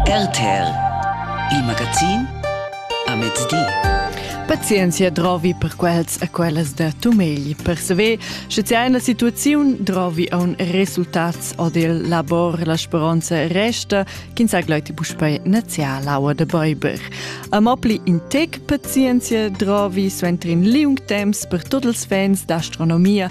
RTL Il magazin a mezdi. Pazienzia drovi per quels e quellas da Tumegl per saver, sche c'è una situazione drovi a un resultats o del labor la speranza resta ch'in sa gloiti buspei nazià l'aua de Beiber. A mopli in tec pazienzia drovi suenter in liung temps per tots els fans d'astronomia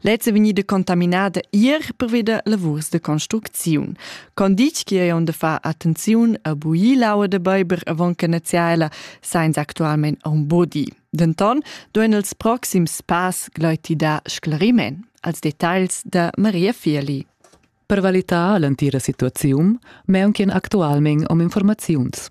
Lez è vegnida contaminada ier pervi da lavurs de construcziun. Con ditg che ei on de far attenziun a buir l'aua de beiber avon che naziaela sainza actualment un bodi. Denton doen els proxims pass gleiti da sclariment als details de Maria Fieli. Per valitar l'entira situaziun, meunchen actualment om informaziuns.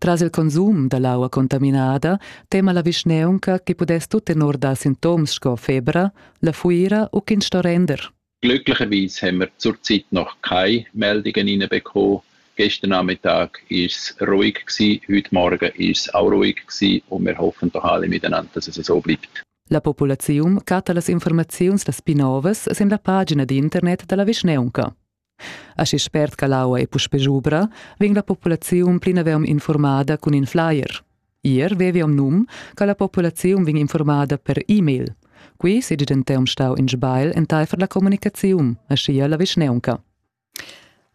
Tras il consum da l'aua contaminada tema la vischnaunca che pudess tut tenor dar sintoms sco febra, la fuira u ch'ins sto render. Glücklicherweise haben wir zurzeit noch keine Meldungen reinbekommen. Gestern Nachmittag war ruhig, gewesen, heute Morgen war es auch ruhig gewesen, und wir hoffen doch alle miteinander, dass es so bleibt. La populaziun chatta las informaziuns las pi novas sin la pagina d'internet da la vischnaunca. Aschi spert che l'aua ei puspei schubra, vegn la populaziun plinavon informada cun in flyer. Ier veviam num che la populaziun vegn informada per e-mail. Qui sedi denteum stau in sbail enteifer la communicaziun, aschia la vischnaunca.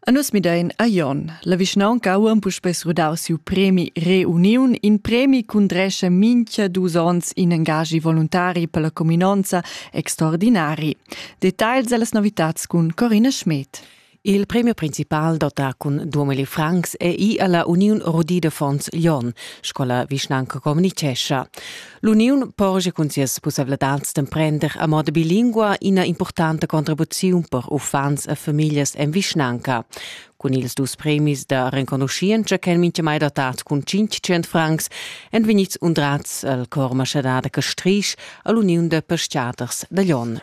A nus midein a Jon. La vischnaunca ha puspei srudau siu premi Reuniun, in premi ch'undrescha mincha dus onns in engagi voluntari per la cuminonza extraordinari. Details dallas novitads cun Corinne Schmed. Il premio principal dota cun 2000 francs è i alla Uniun Rudi de Fons Lyon, scola vischnanca communicescha. L'uniun porge cun sias pussavladads d'emprender a moda bilingua ina importanta contribuziun per uffants e famiglias en vischnanca. Cun ils dus premis da renconuschientscha ch'èn mintgamai datads cun 500 francs èn vegnids undrads al cor maschadà da Castrisch a l'uniun da pestgaders da Lyon.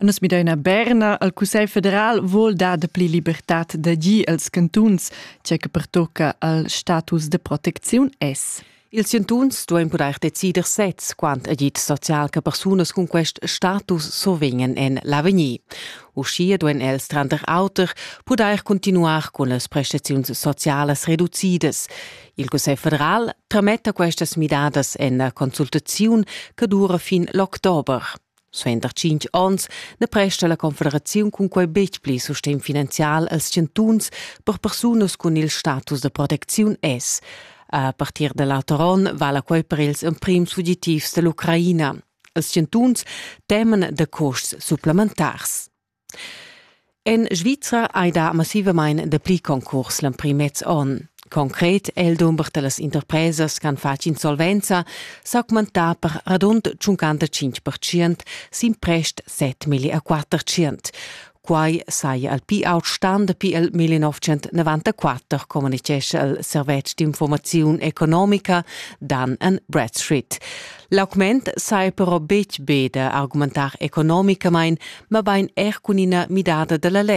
Nus midaina Berna al Cussegl federal vul dar dapli libertad da gi als cantuns, tge che pertocca al status de protecziun es. Ils chantuns duain pudair decider sez quant agid social che persunas cun quest status survegnan en l'avegnir. Uschia duain els tranter auter pudair cuntinuar cun las prestaziuns socialas reducidas. Il Cussegl federal trametta questas midadas en la consultaziun che dura fin l'october. Suenter tschintg onns na presta la confederaziun cun quai betg pli sustegn finanzial als chantuns per persunas cun il status da protecziun S. A partir da l'auter onn vala quai per ils emprims fugitivs da l'Ucraina. Els chantuns teman da custs supplementars. En Svizra ei da massivamain dapli concurs l'emprim mez onn. Concret è il dumber da las interpresas ch'han fatg insolvenza s'augmentà per radund 55 sin prest 7,4 Quai saja il pi aut stan dapi il 1994, communitgescha il servetsch d'informaziun economica Dan and Bradstreet. L'augment sai però betg be da argumentar economicamain, mabain er cun ina midada da la led.